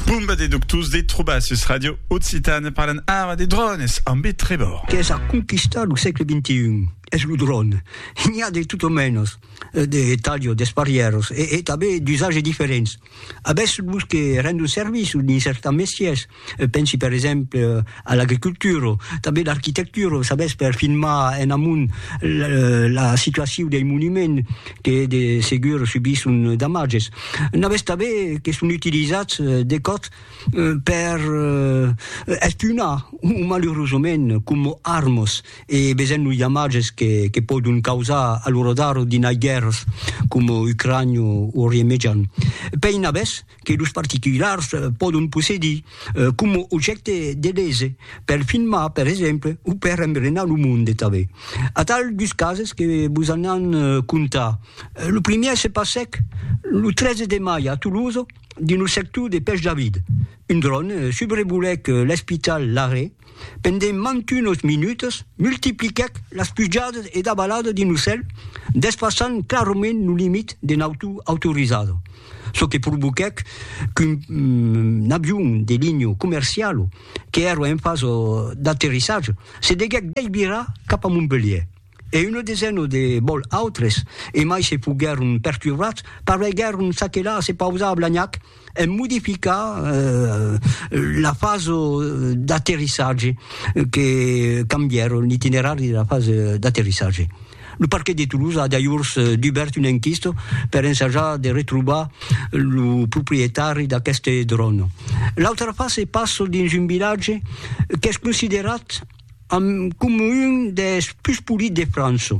Bomba de doctors de trobar sus Radio Occitane parlan ara de drònes ambe Trevor. Qu'es a conquistar lo sègle XXI es lo dròne. N'i a de tot o mènos, de talho, d'esparièros e tanben d'usatge diferents. Avètz los que rendon servici dins cèrta mestiers, Pensi per exemple a l'agricultura, tanben l'arquitectura, sabètz, per filmar en amont la situacion dei monuments que de segur subisson damatges. N'avètz tanben que son utilizats de còps per espionar, o malurosament coma armas, e vesèm los damatges que pòdon causar a lo radar dinai guèrras coma Ucrània o Orient Mejan. Pei n'avètz? que los particulars pòdon possedir coma objècte de lese, per filmar, per exemple, o per embrenar lo monde tanben. Atal dus cases que vos an an contar. Lo primièr se passèc lo 13 de mai a Tolosa, dins lo sector de Pèch David. Un dròn subrevolèc l'espital Larrey. pendent mantunos minutas, multipliquèc las pujadas e davaladas d'un ocèl, despassant clarament lo limit de nautor autorizada, çò que provoquèc qu'un avion de linha comerciala, qu'èra en fasa d'aterrissatge, se deguèc deivirar cap a Montpelhièr. e una desena de bòl autres, e mai se foguèron perturbats, pareguèron s'aquelar a se pausar a Blagnac en modificar la fasa d'aterrissatge, que cambièron l'itinerari de la fasa d'aterrissatge. Lo parquet de Toulouse a dajors dubèrt una enquista per ensajar de retrobar lo proprietari d'aqueste dròn. L'autra fasa se passa dins un vilatge qu'es considerat, Amb coma un des pus polits de França.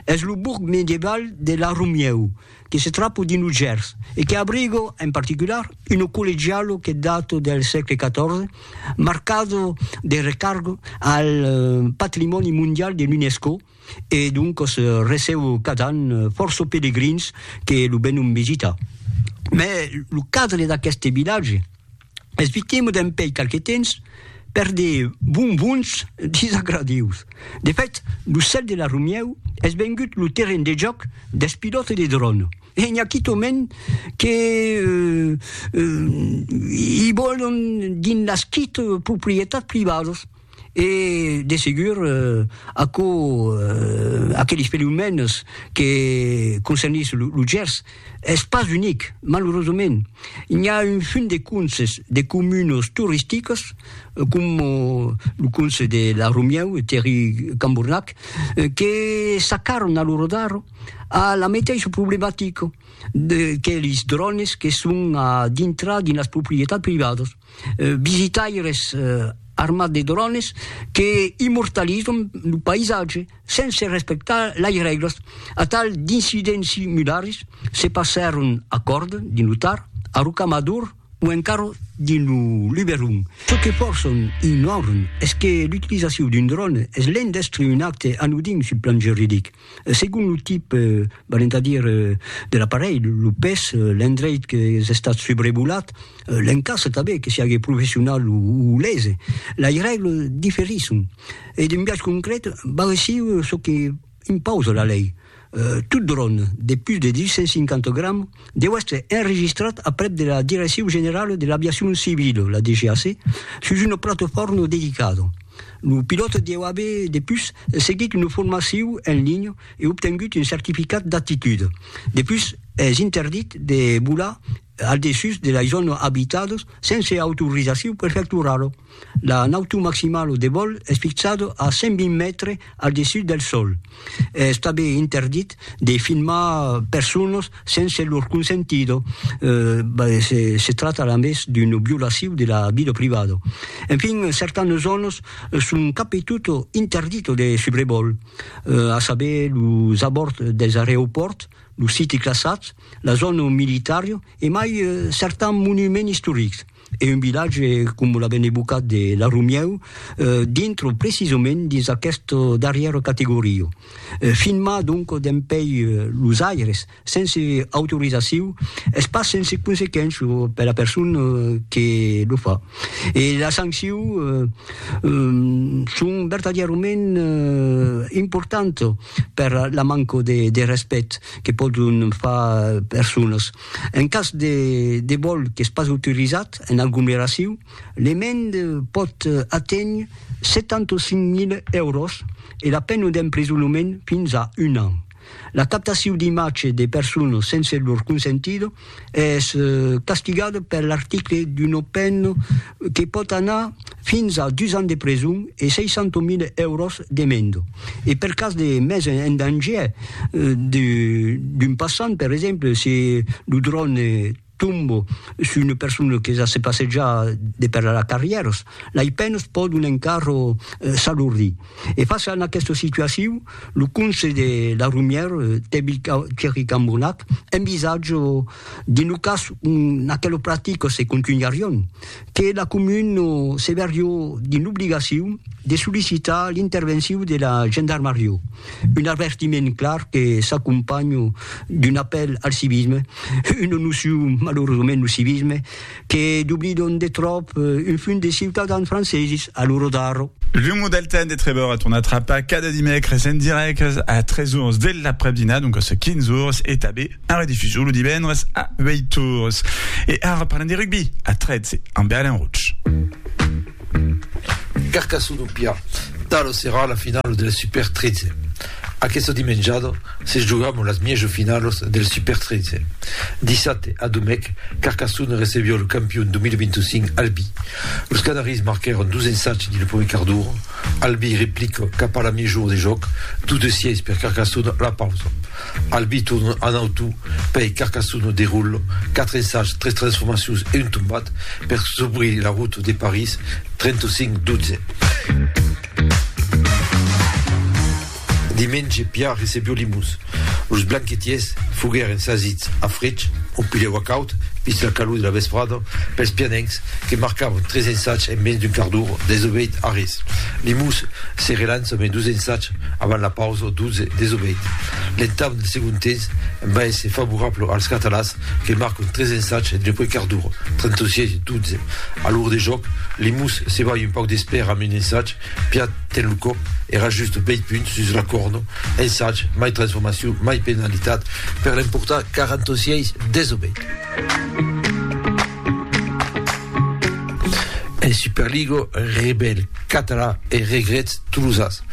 Es lo borg medieval de La Romieu, que se trapo dins lo Gers e que abriga, en particular, una collegiala que data del sègle XIV, marcada de recarga al patrimòni mondial de l'UNESCO e doncas receba cada an fòrça pelegrins que lo venon visitar. Mai lo cadre d'aqueste vilatge. Esvitemo dempèi qualque temps per de bonbons disagradius. De fèt, lo cèl de la Romièu es vengut lo terren de jòc dels pilòtes de dròn e n'i a quitòment que i vòlon dins las quite proprietats privadas. E, de segur, aquò, aqueles fenomèns que concernís lo Gers, es pas unic, malurosament. N'i a un funt de conses de comunas toristicas, coma lo conse de La Romieu, Terri Cambornac, que s'acarran a lo rodar a la meteissa problematica de que lis drònes que son a dintrar dins las proprietats privadas. visitaires armats de drones que immortalizan lo païsatge sense respectar las règlas. Atal d'incidents similars se passèron a Còrd, dins lo Tar, a Rocamador o encara dins lo Luberon. Çò que fòrçan ignoran es que l'utilizacion d'un drone es l'endèstre un acte anodin sul plan juridic. Segon lo tip, valent a dire, de l'aparelh, lo pes, l'endreit qu'es estat subrevolat, l'encastre tanben, que siague professional o lese, lei règle diferisson e d'un biais concret va reçir çò que impausa la lei, tot dròn de pus de 250 grams deu èstre enregistrat aprèp de la Direccion Generala de l'Aviacion Civila, la DGAC, sus una platofòrna dedicada. Lo pilòt deu aver depus seguit una formacion en linha e obtengut un certificat d'aptitude. Depus es interdit de volar al dessús de las zònas abitadas sense autorizacion prefectorala. La nautor maximala o de vòl es fixada a 120 mètres al dessús del sòl. Es tanben interdit de filmar personas sense lor consentida, se tracta a més d'una violacion de la vida privada. Enfin, certanas zònas son cap e tota interditas de subrevòl, a saber, los abòrds dels areopòrts, los siti classats, la zòna militària e mai certans monuments istorics. e un vilatge com l'avèn evocat de La Rumièu dintre precisament dins aquesta darrièra categoria. Fin mas donc dempèi los aires sense autorizaciu es pas sense consequéncia per la persona que lo fa e las sancciu son vertadièrament importantas per la manca de respèct que pòdon far personas. En cas de vòl qu'es pas autorizat en aglomeracion, l'emenda pòt aténher 75.000 èuros e la pena d'emprisonament fins a un an. La captacion d'imatge de personas sense lor consentida es castigada per l'article d'una pena que pòt anar fins a dus ans de preson e 600.000 èuros d'emenda. E per cas de mes en dangièr d'un passant, per exemple, se lo dròne tomba sus una persona que ja se passeja de per la carrièra, lei penas pòdon encara s'alordir. E fàcia a aquesta situacion, lo conselh de la Romièra, Thierry Cambonnac, envisatja de lo cas un aquela practica se contunharion, que la comuna se verrió dins l'obligacion de sollicitar l'intervencion de la gendarmarió, un avertiment clar que s'acompanha d'un apèl al civisme, una nocion malauradament lo civisme que doblidon de tròp un fum de ciutadans franceses a lo rodarro. Lo modèl Ten de Trevor a tornat rapar cada dimècres en dirècte a 3 ors de l'aprèp-dinar, doncas 15 ors, e tanben. En redifusion lo divendres a 8 ores. E ara parlem de rugbi a 13 ambe Alain Roche. Carcassona o Pià, tala serà la finala del Super 13. Aquesta dimenjada se jogam las mièjo finalas del Super 13. Dissabte a Domèc, Carcassona recevió lo campion 2025 Albi. Los Canaris marquèron dos ensatge dins lo prumèr quart d'ora. Albi replica cap a la mièjo ora de jòc, dos de sièis per Carcassona a la pausa. Al biton an auto pei Carcassonne de Roule, quatre ensajs, tres transformacions e un tombat per s'obrir la route de París 35 12. Dimenge Piar recebió Limós. Los blanquetiers foguèren sasits a frech, un pilhèu acaut, vist la calor de la vesprada, pels pianencs que marcavan tres ensajs en mens d'un quart d'ora, desobeït a res. Limós se relança mai dos ensajs Avant la pausa, Dutze desobeït. L'entame del segond temps va èsser favorable als catalans que marcon tres ensatge entre Puig Cardura, 36 e 12. A l'ora de jòc, Limús se balha un pauc d'espèra amb un ensatge, Piat ten lo còp, èra just bèi punt sus la còrna, ensatge, mai transformacion, mai penalitat per l'emportar, 46 desobeït. En Superliga, Rebèl Català e Regrets Tolosas.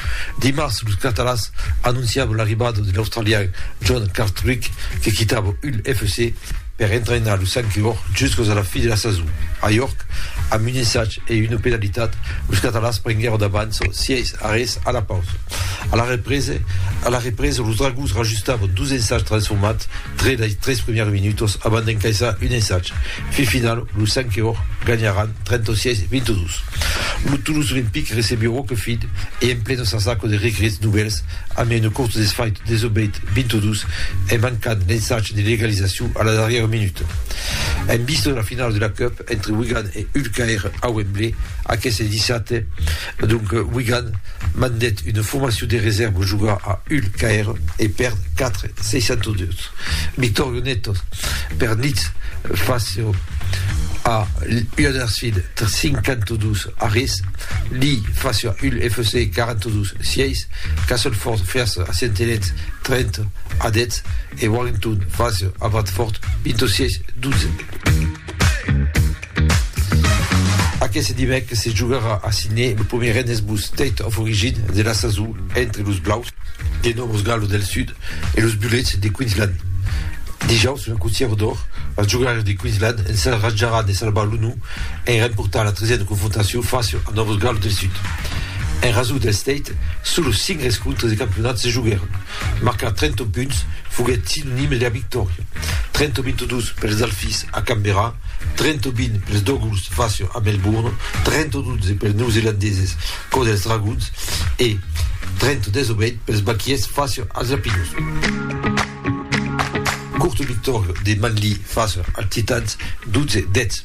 Dimars, los catalans anonciavan l'arribada de l'australian John Cartwright que quitava Hull FC per entrainar los Sankiords juscas a la fi de la sason. A York, amb un ensag e una penalitat, los catalans prenguèron d'avànça 6 a res a la pausa. A la represa, los Dragons rajustavan dos ensags transformats Tre lei tres primièrs minutos abans d'encaissar un ensatge fin final, los Sanqueors ganharàn 36 22. Lo Toulouse Olympique recebió Roquefid e en pleno s'asaco de regrets novèls amb un cort desfait desobeit 22 en mancant l'ensatge de l'egalizacion a la darrièra minuta. En vista de la finala de la Cup entre Wigan e Hull Caire a Wembley aqueste dissabte, Donc Wigan mandèt una formacion de resèrva jogar a Hull KR e pèrd 4 602. Vittorio Netto per Leeds fasió a Huddersfield 52 a res, Lee fasió a Hull FC 42 sièis, Castleford fèrs a Saint Helens 30 a 10, E Warrington, Francia, a Bradford, into sièis dotze. Aqueste dimècres se jogarà a Sydney lo premier Rennes Blues State of Origin de la sason entre los Blaus de Nòvos Gales del Sud e los Bullets de Queensland. Dijaus, la Cotièra d'Or, las jogaires de Queensland ensajaràn de salvar l'onor en remportar la tresièna confrontacion Francia a Nòvos Gales del Sud. En rasor del State, solos cinc rescontres de campionat se joguèron. Marcar 30 punts foguèt sinonime de la victòria, 30-22 pels Alphys a Canberra, 30-20 pels Dogulls Fashion a Melbourne, 30-12 pels Neozelandeses cò dels Dragons e 30-18 pels Bakies Fashion als Lapinus. Curta victòria de Manly Fashion als Titans, 12-10.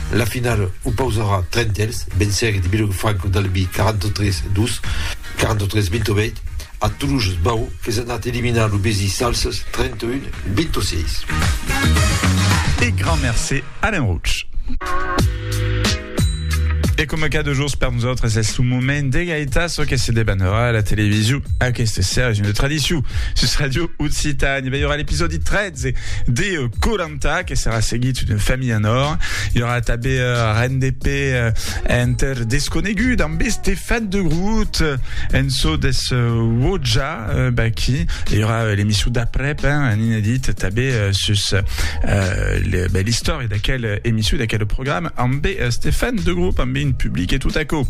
La finala opausarà Trentèls, vencergue de Bilòg Franco d'Albi 43 2, 43 28, a Toluges Bau qu'es anat eliminar lo Besi Salses 31 26. E grand mercé Alain Rouch. E coma cada jours per nosautres es lo moment de gaitar çò que se debanarà a la television aquesta serra. Es una tradicion sus Radio Occitània. Vei ora l'episòdi 13 de 40 Conta que serà seguit d'una familha en òr. I aurà tanben RNDP enter Desconegut amb Estefan de Groot en çò des Wodja Baki. I aurà l'emission d'aprèp, un inedit tanben sus l'istòria d'aquel emission, d'aquel programa amb Estefan de Groot, amb un public e tot aquò.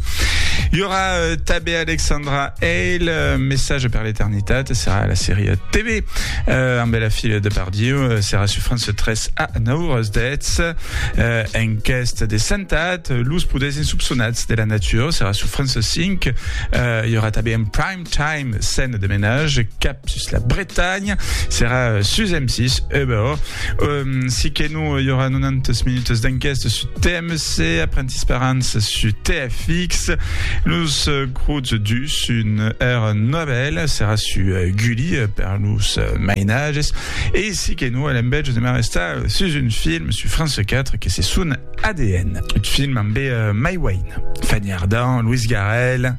I aurà tanben Alexandra El messatge per l'eternitat serà la seria TV amb la filla de Bardieu, serà sur France 3 a 9 horas 10. En quest de sentat, los poders insopçonats de la natura serà sur France 5. I aurà tanben un prime time, scène de menage, cap sus la Bretanha, serà sus M6 Uber. Si que non i aurà 90 minutes d'enquesta su TMC, Apprenti Sperança su TFX, los Cruz dus un era Nobel serà su Gulli per los mainages e si que non l'embètge de Marestal sus un film su France 4 que se son ADN, un film ambe Mai Wayne, Fanny Ardant, Louis Garrel,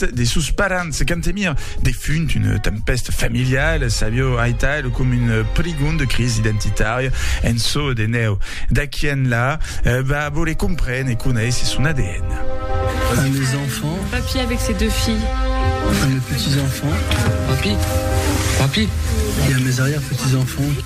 de sos parents Cantemir, defunt, una tempèsta familiala s'avió aital com un prigon de crisi identitària en çò de nèu. D'aqui enlà, va voler comprene e conéisser son adn. Un mes enfants. Papi avec ses deux filles. Un mes petits enfants. Papi. Papi. Et un mes arrière petits enfants.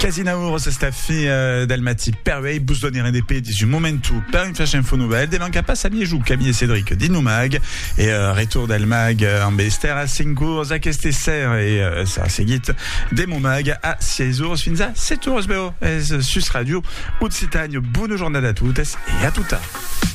Quasi nau oras es la fin del mati. Per uei bus donirem de pedis un momentu per un flash info novel de manca pas a Miejou, Camille e Cedric dins lo mag e retorn del mag amb Esther a 5 oras aqueste ser e serà seguit de mon mag a 6 oras fins a 7 oras. Bèu es sus Radio Occitània. Bona jornada a totes e a totas.